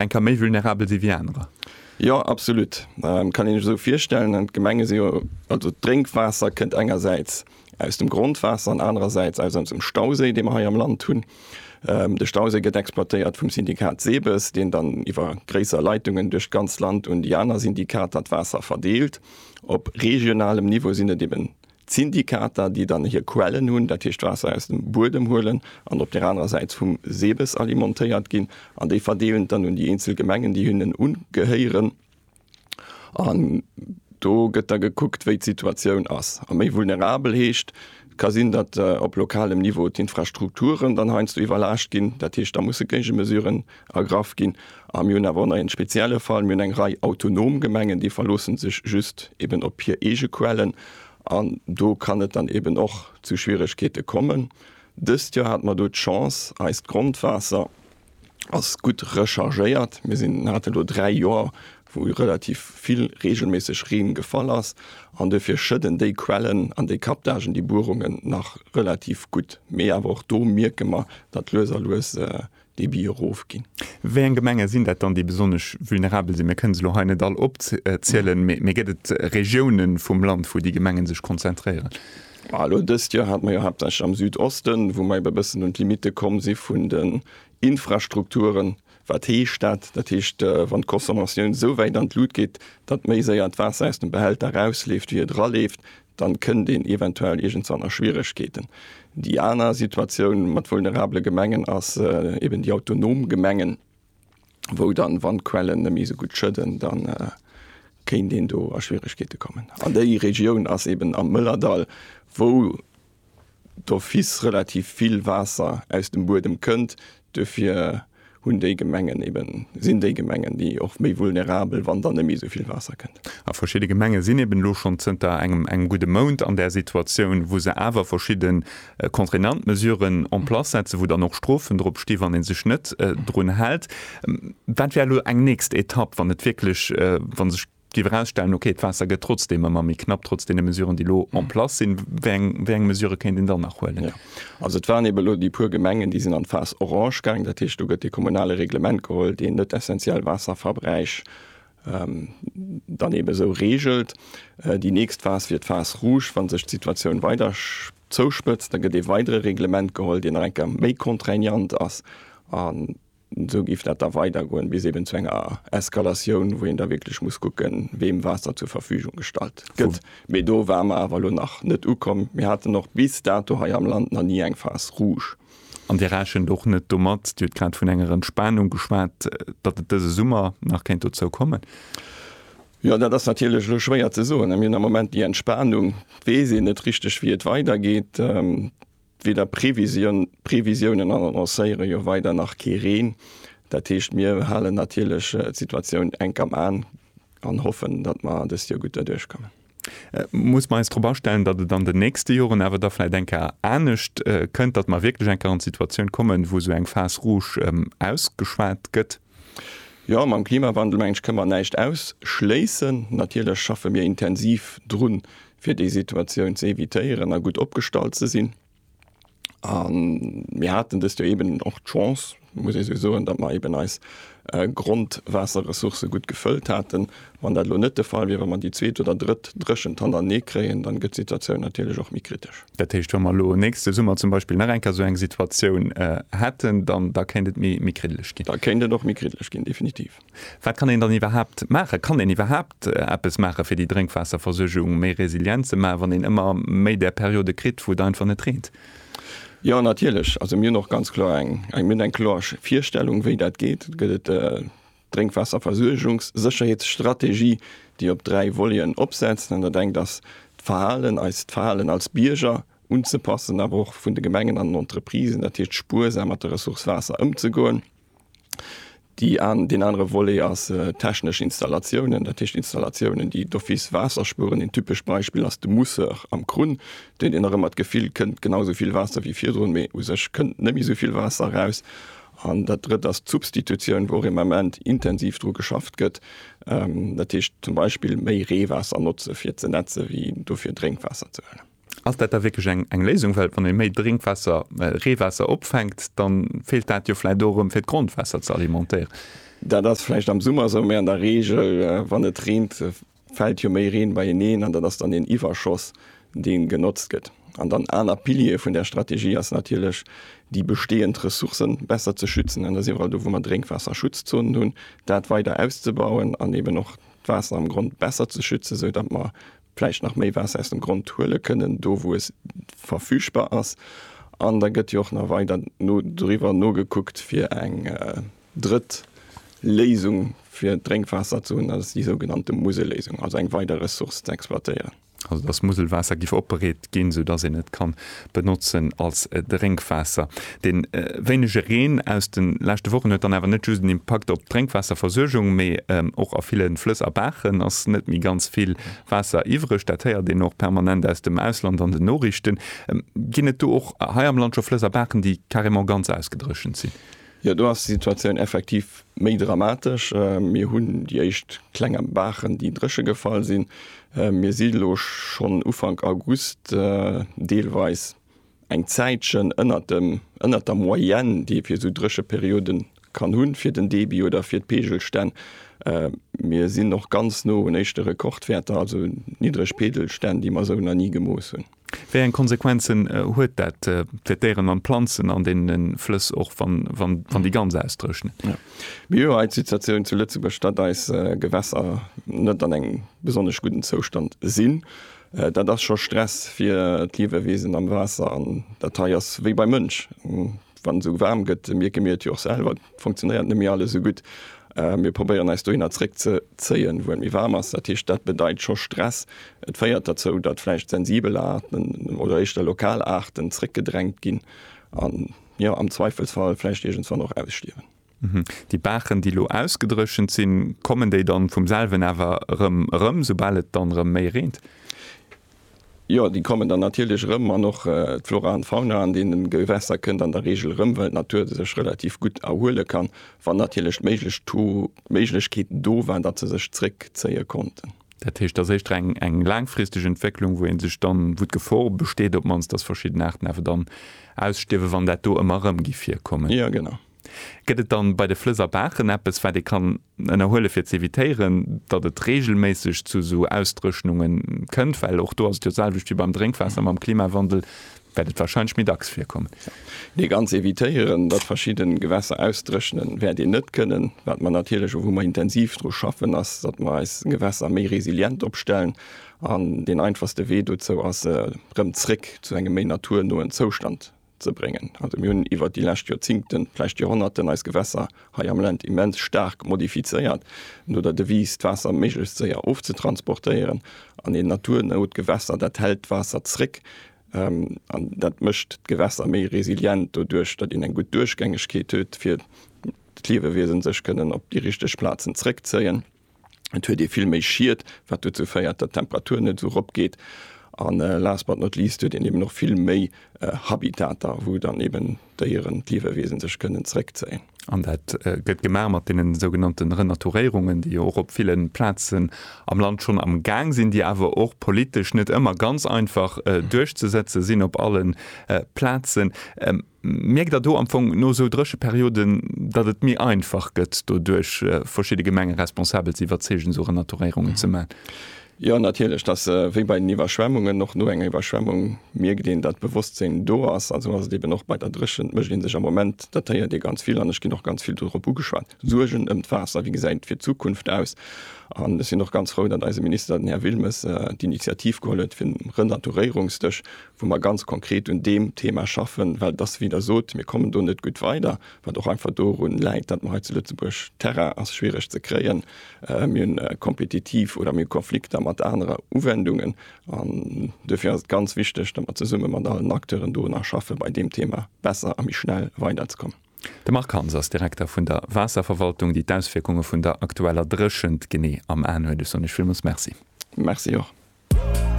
eng ka méi vulnerabel si wéi anerer. Jo absolut ähm, kann een ech esou virstellen. An d'Gemenge si jo also d'Drénkwaasser kënnt engersäits aus dem Grondwaasser an anerersäits aus onsem Stauséi, dee mer hei am Land hunn. Ähm, de Stauséi gëtt exploitéiert vum Syndikat SEBES, deen dann iwwer gréisser Leitungen duerch d'ganz Land un déi aner Syndikater d'Waasser verdeelt. Op regionalem Niveau sinn et eben D'Syndikater, déi dann hir Quellen hunn, dat heescht d'Waasser aus dem Buedem huelen an op där anerer Säit vum SEBES alimentéiert ginn an déi verdeelen et dann un déi eenzel Gemengen, déi hinnen ugehéieren. An do gëtt da gekuckt, wéi d'Situatioun ass. A méi vulnerabel heescht, et ka sinn, datt op lokalem Niveau d'Infrastrukturen dann heiansdo iwwerlaascht ginn. Dat heescht, da musse Géigemesuren Ergraff ginn. A mir hunn awer och nach een spezielle Fall, Mir hunn eng Rei autonom Gemengen, déi verloossen sech just eben op hir eege Quellen. An do kann et dann eben och zu Schwieregkeete kommen. Dëst Joer hate mer do d'Chance, eist Grondwaasser ass gutt rechargéiert. Mir sinn, mir hate lo dräi Joer, wou relativ vill reegelméisseg Reen gefall ass. An duerfir schëdden déi Quellen an déi Captagen, déi Buerungen nach relativ gutt. Mee awer och do mierke mer, datt lues a lues Debit erofginn. Wéi eng Gemenge sinn dat dann, déi besonnesch vulnerabel sinn? Mir kënnen se elo hei net all opzielen, mee gëtt et Regioune vum Land, wou déi Gemenge sech konzentréieren? Elo dëst Joer hate mer jo haaptsächlech am Südosten, wou mer ebe e bëssen un d'Limitte komm si vun den Infrastrukturen. Wat heescht dat? Dat heescht, wann d'Consommation esou wäit an d'Lut geet, datt méi séier d'Waasser aus dem Behälter erausleeft, wéi et eraleeft, dann kënnt een eventuell iergendwann a Schwieregkeeten. Déi aner Situatioun mat vulnerabele Gemengen ass eben déi autonom Gemengen, wou dann, wann d'Quellen net méi esou gutt schëdden, dann kéint een do a Schwieregkeete kommen. An déi Regioun ass eben am Mëllerdall, wou d'office relativ vill Waasser aus dem Buedem kënnt. Duerfir hunn déi Gemengen eben, sinn déi Gemengen, déi och méi vulnerabel, wann dann net méi esou vill Waasser kënnt. A verschidde Gemenge sinn eben elo schonn zënter engem engem gudde Mount an där Situatioun, wou se awer verschidde contraignant Mesuren en place setzen, wou dann och Strofen drop sti wann ee sech net drun hält. Wat wär elo eng nächst Etapp, wann et wierklech, wa sech. Et géif erausstellen, okay, d'Waasser gëtt trotzdeem ëmmer méi knapp, trotz deene Mesuren, déi elo en place sinn. Wéi eng, wéi eng Mesurë kéint een dann nach huelen? Jo, also et waren eeben elo déi puer Gemengen, déi sinn an d'Phas orange gaangen. Dat heescht, do gëtt dee kommunale Reglement geholl, deen net essentiell Waasserverbräich dann eeben esou reegelt. Déi nächst Phas wier d'Phas rouge, wa sech d'Situatioun weider zouspëtzt. Da gëtt ee weidere Reglement geholl, deen nach eng Kéier méi contraignant ass. Esou géif dat da weidergoen, bis eben zu enger Eskalatioun, wou een da wierklech muss kucken, weem Waasser zur Verfügung gestallt gëtt. Mee do ware mer awer elo nach net ukomm. Mir haten och bis dato hei am Land nach ni eng Phase rouge. An Dir rechent och net domat, Dir hutt grad vun enger Entspanung geschwat, datt et dëse Summer nach kéint dozou kommen? Jo, dat ass natierlech elo schwéier ze soen. Mir hunn am Moment déi Entspanung. Et weess een net richteg, wéi et weidergeet. D'Wieder Previsioun, Previsiounen annoncéiere jo weider nach kee Reen. Dat heescht mir halen natierlech d'Situatioun enk am An an hoffen, datt mer dëst Joer gutt derduerch kommen. Muss mer eis drop astellen, datt et an den nächste Joren awer da vläicht eng Kéier anescht kënnt, datt mer wierklech eng Kéier an d'Situatioun kommen, wou esou eng Phase rouge ausgeschwat gëtt? Jo, mam Klimawandel, meng ech, kënne mer näischt ausschléissen. Natierlech schaffe mir intensiv drun, fir déi Situatioun ze evitéieren a gutt opgestallt ze sinn. An mir haten dëst Joer eeben och d'Chance, muss ee sou soen, datt mer eeben eis Grondwaasserressourcë gutt gefëllt haten. Wann dat elo net de Fall wier, wa mer déi zweet oder drëtt Dréchent hannertenee kréien, dann gëtt d'Situatioun natierlech och méi kritesch. Dat heescht, wa mer elo nächste Summer zum Beispill nach eng Kéier esou eng Situatioun hätten, dann da kéint et méi kriddeleg ginn? Da kéint et och méi kriddeleg ginn, definitiv. Wat kann een dann iwwerhaapt maachen? Kann een iwwerhaapt eppes maache fir déi Drénkwaasserversuergung méi resilient ze maachen, wann een ëmmer méi där Periode kritt, wou et einfach net reent? Jo, natierlech. Also mir hunn och ganz kloer eng, mir hunn eng kloer Virstellung, wéi dat geet. Et gëtt d'Drénkwaasserversuergungssécherheetsstrategie, déi op dräi Voleten opsetzt. An dat engt ass d'Verhalen, eist Verhalen als Bierger unzepassen, awer och vun de Gemengen an den Entreprisen, dat heescht spuersam mat der Ressource Waasser ëmzegoen. Deen anere Volet ass technesch Installatiounen, dat heescht Installatiounen, déi d'office Waasser spueren. Een typescht Beispill ass de Mousseur am Krunn, deen een nach ëmmer d'Gefill kënnt, genau esou vill Waasser wéi virdrun, mee u sech kënnt net méi esou vill Waasser eraus. An dat Drëtt ass d'Substitutioun, wou och im Ament intensiv dru geschafft gëtt, dat heescht zum Beispill méi Reewaasser notze fir ze nätze wéi dofir Drénkwaasser ze huelen. Ass dat da wierklech eng Léisung? Well wann ee méi Drénkwaasser, Reewaasser opfänkt, da feelt dat jo vläicht och erëm, fir d'Grondwaasser ze alimentéieren. Dat ass vläicht am Summer esou, mä an der Reegel, wann et reent, fält jo méi Reen beieneen an dat ass dann een Iwwerschoss, dee genotzt gëtt. An dann aner Pilier vun där Strategie ass natierlech, déi bestehend Ressourcë besser ze schützen. An da si mer elo do, wou mer Drénkwaasserschutzzonen hunn, dat weider auszebauen an eeben och d'Waasser am Grond besser ze schützen, esou datt mer vläicht nach méi Waasser aus dem Grond huele kënnen, do wou et verfügbar ass, an da gëtt jo och nach weider no doriwwer nogekuckt, fir eng drëtt Léisung fir d'Drénkwaasser ze hunn, dat ass déi sougenannte Muselléisung, also eng weider Ressource ze exploitéieren. Also dass Muselwaasser giff opbereet ginn, sou dass een et kann benotzen als Drénkwaasser. De wéinege Reen aus de leschte Wochen huet dann awer net just en Impakt op d'Drénkwaasserversuergung, mee och a ville Flëss a Baachen ass net méi ganz vill Waasser iwwereg. Dat héiert een och permanent aus dem Ausland an den Noriichten. Ginn et do och hei am Land scho Flëss a Baachen, déi carrément ganz ausgedréchent sinn? Jo, do ass d'Situatioun effektiv méi dramatesch. Mir hunn déi éischt klenger Baachen, déi dréche gefall sinn. Mir si lo schonn Ufank August deelweis eng Zäitchen ënnert dem, ënnert der Moyenne, déi ee fir esou dréche Periode kann hunn, fir den Debit oder fir d'Peegelstänn. Mir sinn och ganz no un éischte Rekordwäerter, also niddereg Peegelstänn, déi mer esou nach ni gemooss hunn. Wéi eng Konsequenzen huet dat fir d'Déieren an d'Planzen an deene Flëss, och wann déi ganz ausdréchnen? Mir hu hei d'Situatioun zu Lëtzebuerg, datt eis Gewässer net an engem besonnesch gudden Zoustand sinn. Dat ass scho Stress fir d'Liewewiesen am Waasser an dat hei ass wéi beim Mënsch. Wann esou waarm gëtt, mierke mir et jo och selwer, et funktionéiert net méi alles esou gutt. Mir probéieren eis dohinner zréck ze zéien, wou et méi waarm ass. Dat heescht, dat bedeit scho Stress. Et féiert derzou, datt vläicht sensibel Aarten oder éischter lokal Aarten zréckgedrängt ginn an, jo, am Zweifelsfall vläicht iergendwann och ausstierwen. Déi Baachen, déi elo ausgedréchent sinn, kommen déi dann vum selwen awer erëm erëm, soubal et dann erëm méi reent? Jo, déi kommen dann natierlech erëm an och d'Flora an d'Fauna an deenen Gewässer kënnt an der Reegel erëm, well d'Natur sech relativ gutt erhuele kann, wann natierlech d'Méiglechkeet do war, datt se sech zréckzéie konnten. Dat heescht, et ass éischter eng laangfristeg Entwécklung, wou ee sech dann, wou d'Gefor besteet op d'mannst, datt verschidden Aarten awer dann ausstierwen, wann dat do ëmmer erëm gi virkommen? Jo, genau. Gëtt et dann bei de Flëss a Baachen eppes, wat ee kann ënnerhuelen, fir ze evitéieren, datt et reegelméisseg zu esou Ausdréchnunge kënnt? Well och do ass et jo d'selwecht wéi beim Drénkwaasser, Mam Klimawandel wäert et warscheinlech méi dacks virkommen. Nee, ganz evitéieren, datt verschidde Gewässer ausdréchnen, wäert een net kënnen. Wat mer natierlech a wou mer intensiv dru schaffen, ass, datt mer eis Gewässer méi resilient opstellen. An deen einfachste Wee dozou ass, se erëm zréck zu engem méi naturnoen Zoustand ze bréngen. Also mir hunn iwwert déi lescht Joerzingten, vläicht Joerhonnerten, eis Gewässer hei am Land immens staark modifizéiert, no der Devise, d'Waasser méiglechst séier ofzetransportéieren. An een naturnout Gewässer, dat hält d'Waasser zréck an dat mécht d'Gewässer méi resilient doduerch, datt een eng gutt Duerchgängegkeet huet, fir d'Liewewiesen sech kënnen op déi richteg Plazen zréckzéien. et huet ee vill méi Schied, wat dozou féiert, datt d'Temperatur net esou erop geet, a last but not least huet een eben och vill méi Habitater, wou dann eben d'Déieren, d'Liewewiesen sech kënnen zeréckzéien. An dat gëtt gemaach mat deenen sougenannten Renaturéierungen, déi jo och op ville Plazen am Land schonn am Gaang sinn, déi awer och politesch net ëmmer ganz einfach duerchzesetze sinn op alle Plazen. Mierkt Der do am Fong no esou Drécheperioden, datt et méi einfach gëtt doduerch, verschidde Gemengeresponsabel ze iwwerzeegen, esou Renaturéierungen ze maachen? Jo, natierlech. Et ass wéi bei den Iwwerschwemmungen. Och no enger Iwwerschwemmung mierkt een, datt d'Bewosstsinn do ass. An esou ass et eeben och bei der Dréchent. Et mécht ee sech am Moment, dat héiert ee ganz vill an ech ginn och ganz vill dorop ugeschwat, Suergen ëm d'Waasser. Wéi gesäit et fir d'Zukunft aus? An ech sinn och ganz frou, datt eise Minister, den Här Wilmes, d'Initiativ geholl huet fir e Renaturéierungsdësch, wou mer ganz konkret un deem Thema schaffen, well et ass wéi Der sot, mir kommen do net gutt weider, wat och einfach dorun läit, datt mer hei zu Lëtzebuerg, Terrain ass schwiereg ze kréien, mir hunn kompetitiv oder mir hu Konflikter mat anere Uwendungen an duerfir ass et ganz wichteg, datt mer zesumme mat allen Acteuren do nach schaffen, bei deem Thema besser a méi schnell weiderzekommen. De Marc Hans ass Direkter vun der Waasserverwaltung, déi d'Auswierkunge vun der aktueller Dréchent genee am Aen huet. Ech soen Iech villmools Merci. Merci och.